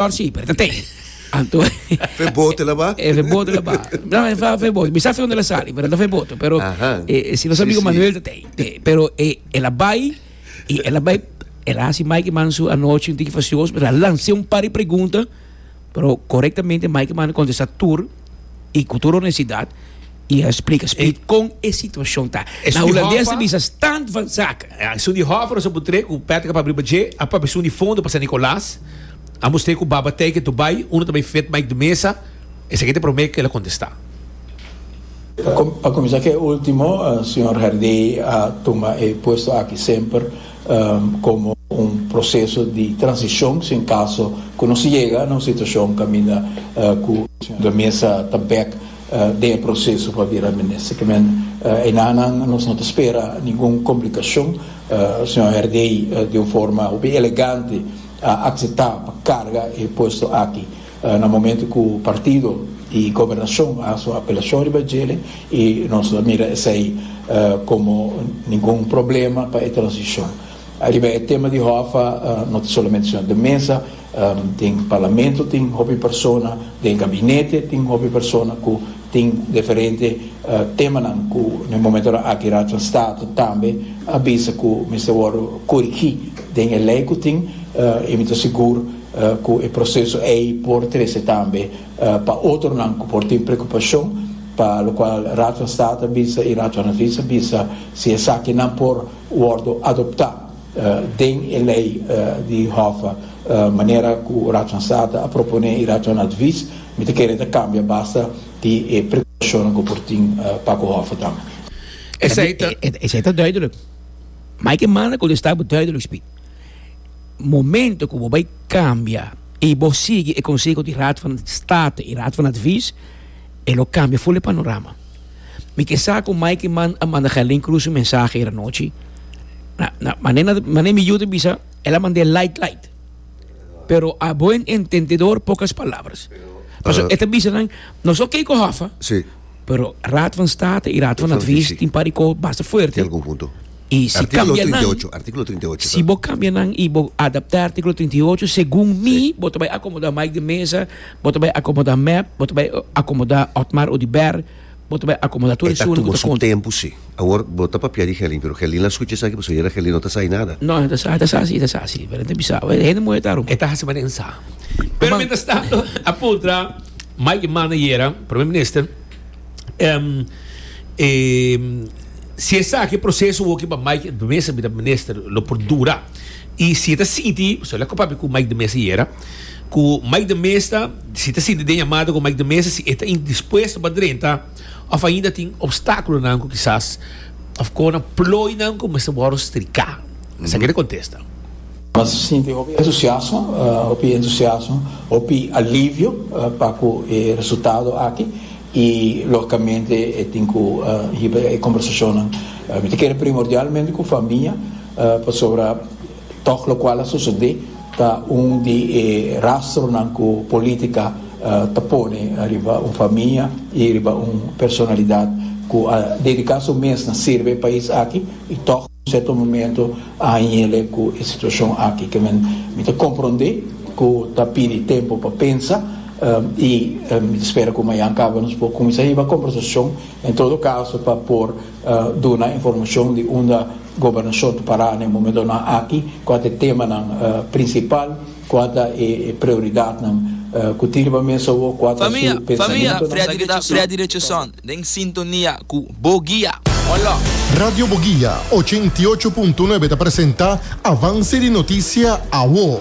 Tor si, pero ta te. Anto Fe boto la ba. e fe boto la ba. No, e fa fe boto. Mi sa fe unda la sali, pero ta fe boto. Pero Ahan. e, e, si nos Sí, amigo sí. Manuel ta te, te. Pero e, el a bai, y el a bai, el a hasi Mike man su anochi un tiki facioso, pero a lanse un par di pregunta, pero correctamente Mike man a contesta tur. y cu tur honestidad y a splica spi con e situacion ta. Na Hulandes ta bisa stand van zaken. Ja, esun di hoffer nos a butré cu Patrick a pabri pa dje, a papia esun di fondo pa San Nicolas. A mustr'é cu baba tei ke Dubai, uno ta bay fed Mike de Mesa. Esaki ta e prome kel a contesta. Pa cuminsa ke ultimo, Señor Herdey a tuma e puesto aki semper komo un proseso di transishon si en kaso ku nos yega na un situashon kaminda ku Sra. Mesa ta bek den e proseso pa bira minister. Kimen enanan nos no ta spera ningun komplikashon. Sra. Herrey di un forma hopi elegante a akseptá pa karga e puesto aki. Na momento cu partido y gobernacion a haci su apelacion riba e djele y nos ta mira esey como ningun problema pa e transicion. Riba e tema di Hoffa no ta solamente Señor de Meza, tin Parlamento tin hopi persona, den Gabinete tin hopi persona cu Tin diferente temanan cu na e momentonan aki Raadvoorstaten tambe a bisa cu mester wordo corigi den e ley cu tin y mi ta sigur cu e proceso ey por trece tambe pa otronan cu por tin preocupacion pa locual Raadvoorstaten a bisa y Raadvoornadvies a bisa si esaki nan por wordo adopta den e ley di Hof manera cu Raadvoorstaten a propone y Raadvoornadvies Mi ta kere ta kambia basta di e precaucionnan cu por tin pa cu hoffe tambe. Esey ta. Esey ta duidelijk. Ma hay ke manda cu lista bo duidelijk spit. Momento cu bo bay cambia y bo sigui e conseho di Raad van State y Raad van Advies, e lo cambia full e panorama. Mi ke sa cu Mike Mann a manda Gerlin Cruz un mensahe ayer anochi. Na, na, mane, mane mi yu ta bisa, el a manda e light light. Pero a buen entendedor pocas palabras. Paso uh, e ta bisa nan, no so kei ko hafa, sí. pero Raad van State i Raad van Advies tin pari ko basta fuerte. Tem conjunto. I si artículo 38, artículo 38. Si bo cambia nan i bo adapta artículo 38, según sí. mi, bo te bai acomoda Mike de Mesa, bo te bai acomoda Mep, bo te bai acomoda Otmar Odiber, Bo ta bai akomoda tur e shuri ku ta konta. E ta tuba su tempu si. Awor bo ta papia di Gelin pero Gelin la skucha esaki pasobra yera Gelin no ta sa di nada. No, e ta sa, e ta sa si, e ta sa si. Pero enta bisa, e hende muhe ta rumba. E ta hasi manera en sa. Pero mientras tanto a puntra Mike manda yera Prome Minister si esaki proseso woki pa Mike mester bira Minister lo por dura. I si e ta sinti, pasobra el a papia ku Mike de Mesa ayera, ku Mike de Mesa, si e ta sinti den yamada ku Mike de Mesa si e ta indispuesto pa drenta òf ainda tin opstákulonan ku kisas òf kona ploinan ku mester wòrdu striká? Esaki ta kontesta. Mester ta sinti hopi entusiasmo, hopi entusiasmo, hopi alivio pa ku e resultado aki i lógikamente e tin ku hiba e kombersashonnan. Mi ta kere primordialmente ku famia. Pasobra tòg lokual a sosodé ta un di e rastronan ku polítika ta pone riba un famia i riba un personalidat ku a dediká su mes na sirbi e pais aki i tòg un sierto momentu a hañele ku e situashon aki. Ke men mi ta komprondé ku ta pidi tempu pa pensa i mi ta spera ku mañan kaba nos por kuminsá hiba kombersashon en todo kaso pa por Duna informashon di unda Gobernashon ta pará na e momentonan aki, kua ta e temanan prinsipal, kua ta e prioridatnan ku tin riba mes awo, kua ta su pensamentunan. Freddy Richardson den sintonia ku Bo Guia. Hola. Radio Bo Guia ochenta i ocho punto nuebe ta presenta Avanse di Notisia Awo.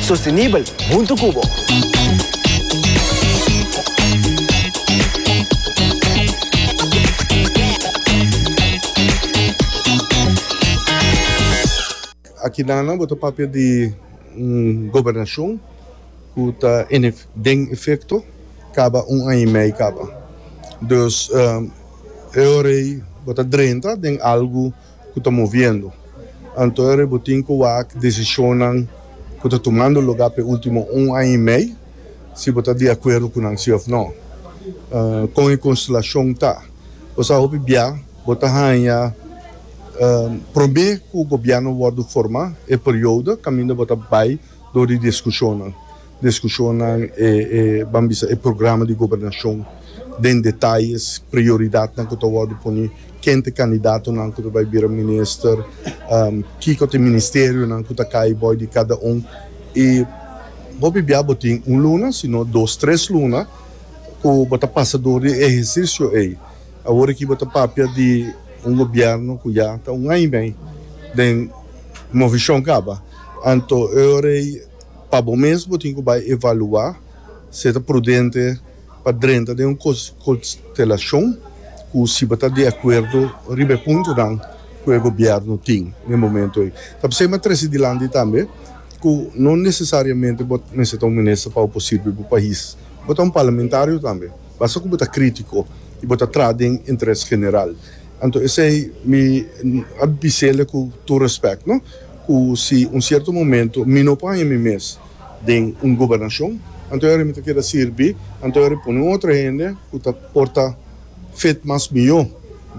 Sostenibel huntu cu bo. Aki Nana bo ta papia di un gobernacion cu ta den efecto caba un aña y mei caba. Dus e ora ey bo ta drenta den algo. ku ta moviendo, anto e ributin ku wak desishonnan ku ta tumando lugá pa e último un aña i mei, si bo ta di akuerdo ku nan si òf nò. Kon e konstelashon ta? Bo sa hopi bia bo ta haña promé ku gobièrnu wòrdu formá e periodo kaminda bo ta bai dor di diskushonnan. Discusionnan e ban bisa e programa di gobernacion den detayes, prioridadnan cu ta wordo poni, ken ta e candidatonan cu ta bay bira minister, kico ta e ministerionan cu ta cay boy di cada un y bo bibia bo tin un luna sino dos, tres luna cu bo ta pasa door di e ehercicio ey. Awor aki bo ta papia di un gobierno cu ya ta un aña y mey den movencion caba anto e ora ey. Pa bo mes bo tin ku bai evaluá si e ta prudente pa drenta den un konstelashon ku siba ta di akuerdo riba e puntonan ku e gobièrnu tin na e momentu ei. Ta p'esei m'a trese dilanti tambe ku no nesesariamente bo mester ta un minister pa bo por sirbi bo pais. Bo ta un parlamentario tambe, basta ku bo ta krítiko i bo ta traha den interes general. Anto esei mi a bis'el ku tur respèk, no. Cu si un cierto momento mi no por haña mi mes den un gobernacion, anto ahora mi ta keda sirbi, anto ahora pone un otro hende cu ta por ta fit mas mijo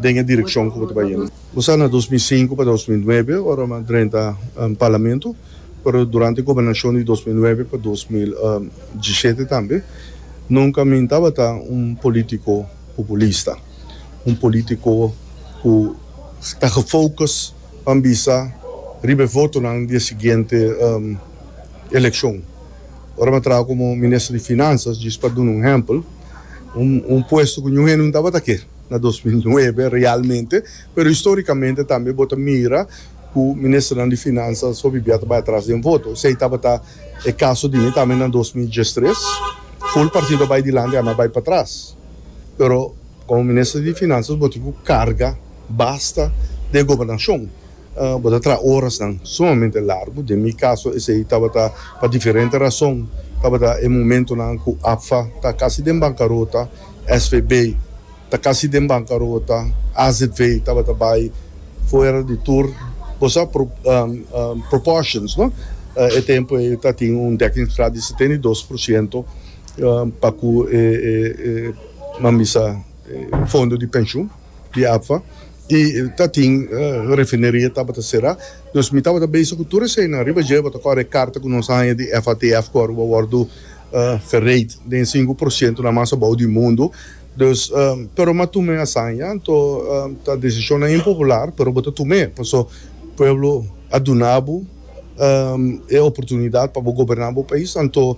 den e direccion cu bo ta bay yendo. Bo sa na dos mil sinku pa dos mil nuebe ora mi a drenta Parlamento, pero durante e gobernacion di dos mil nuebe pa dos mil diesisiete tambe, nunca mi no tabata un politico populista, un politico cu ta gefocus. pa bisa riba e votonan di e siguiente elekshon. Ora mi a traha komo minister di Finansas, djis pa duna un ehèmpel, un puesto ku niun hende no tabata ke na dos mil nuebe realmente, pero histórikamente tambe bo ta mira ku ministernan di Finansas hopi bia ta bai atras den voto. Esei tabata e kaso di mi tambe na dos mil diestres, ful partido a bai dilanti, ami a bai patras, pero. Komo minister di Finanzas bo tin ku karga basta den e gobernashon. Bo ta traha orasnan sumamente largu. Den mi kaso esei tabata pa diferente rason. Tabata e momentunan ku APFA ta kasi den bankarota, SVB ta kasi den bankarota, azv tabata bai fuera di tur. Bo sa proportions, no? E tempu ei ta tin un dekkingsgraad di setenta i dos por siento. pa ku e mami sa e fondo di penshun di APFA i ta tin refineria tabata será dus mi tabata bese ku tur eseinan riba dje bo ta kore e karta ku nos a haña di FATF ku Aruba wòrdu fereit den e sinku por sientunan mas abou di mundu dus pero mi a tuma e asaña anto ta desishonnan impopular pero bo ta tum'e paso pueblo a duna bo e oportunidat pa bo goberná bo pais anto.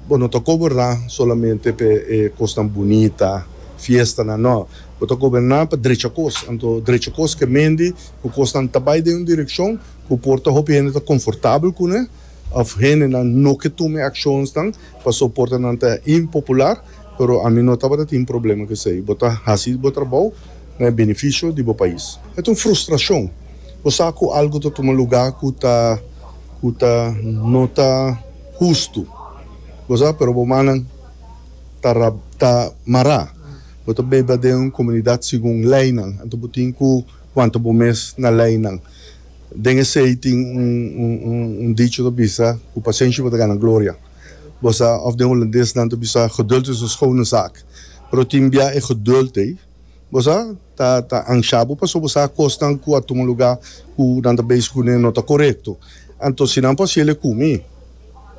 Bo no ta goberná solamente p'e kosnan bunita, fiestanan, nò. Bo ta goberná pa drecha kos. Anto drecha kos ke mendi ku kosnan ta bai den un direkshon ku por ta hopi hende ta konfortabel kuné òf hendenan no ke tuma e akshonsnan pasobra por ta nan ta impopular, pero ami no tabata tin problema ku esei. Bo ta hasi bo trabou na e benefisio di bo pais. E ta un frustrashon. Bo sa ku algu ta tuma lugá ku ta ku ta no ta. hustu. Bo sa, pero bo mannan ta ra, ta mará. Bo ta bida den un komunidat segun leinan, anto bo tin ku wanta bo mes na leinan. Den esei tin un, un, un, un dicho ta bisa, Ku pasenshi bo ta gana gloria. Bo sa, òf den hulandes nan ta bisa, geduld is een schone zaak. Pero tin bia e geduld ei. Bo sa ta ta anshá bo pasobra bo sa akosnan ku a tuma un lugá ku nan ta bes ku ne no ta korekto. Anto si nan por hasiel e ku mi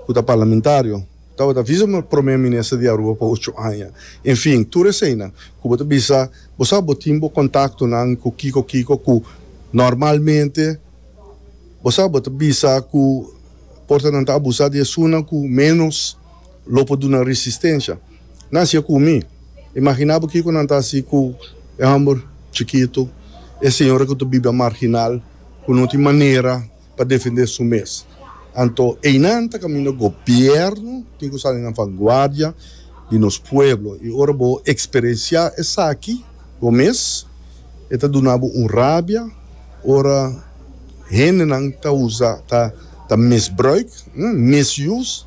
ku ta parlamentario tabata visa mi promé minister di Aruba pa ocho aña. Enfin, tur eseinan ku bo ta bisa bo sa bo tin bo kontaktonan ku kiko kiko ku normalmente bo sa bo ta bisa ku por ta nan ta abusá di esunnan ku ménos. Lo por duna resistencia. Nan sigue cu mi. Imagina bo kico nan ta haci cu e homber chikito, e señora cu ta biba marginal, cu no tin manera pa defende su mes. Anto eynan ta caminda gobierno tin cu sali na vanguardia di nos pueblo. Y ora bo experiencia esaki bo mes, e ta duna bo un rabia ora hendenan ta uza, ta misbruik, misuse.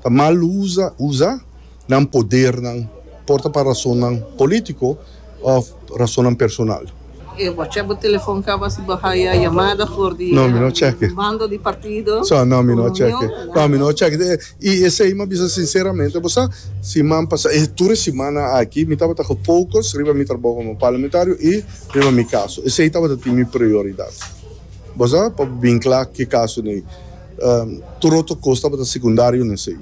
Ta mal usa usa nan podernan, por ta pa rasonnan polítiko òf rasonnan personal. E bo a chèk bo telefòn kaba si bo haya yamada for di bando di partido? No, mi no a chèk'e. No, mi no a chèk'e. I esei mi a bisa sinseramente bo sa, siman pasa, e tur e simana aki mi tabata gefocus riba mi trabou komo parlamentario i riba mi kaso. Esei tabata tin mi prioridat. Bo sa, pa bo bin kla ki kaso n'ei. Tur otro cos tabata secundario na esey.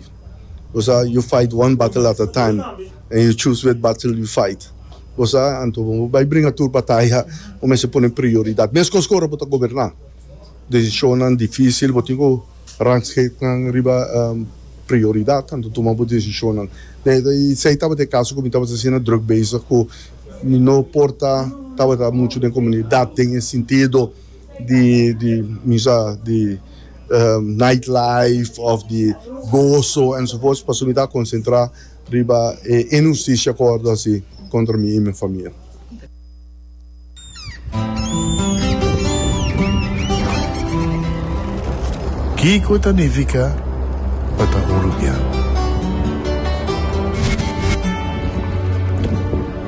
Bosa you fight one battle at a time and you choose which battle you fight. Bosa anto bo bay bringa tur bataya bo mester pone prioridad. Mescos cu ora bo ta goberna. Decisionnan dificil bo tin cu ransgate nan riba prioridad anto tuma bo decisionnan. Esey tabata e caso cu mi tabata asina drug bezig cu mi no por ta tabata mucho den comunidad den e sintido. di di bisa di night life of di goso en su pos pasobra mi ta konsentrá riba e inhustisia ku hordo hasi kontra mi i mi famia. Kiko ta nifiká pa ta hurupiá?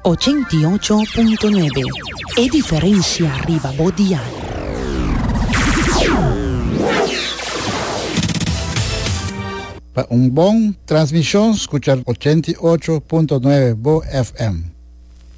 Ochenta i ocho punto nuebe, e diferensia riba bo dial. Pa un bon transmishon skucha ochenta i ocho punto nuebe bo FM.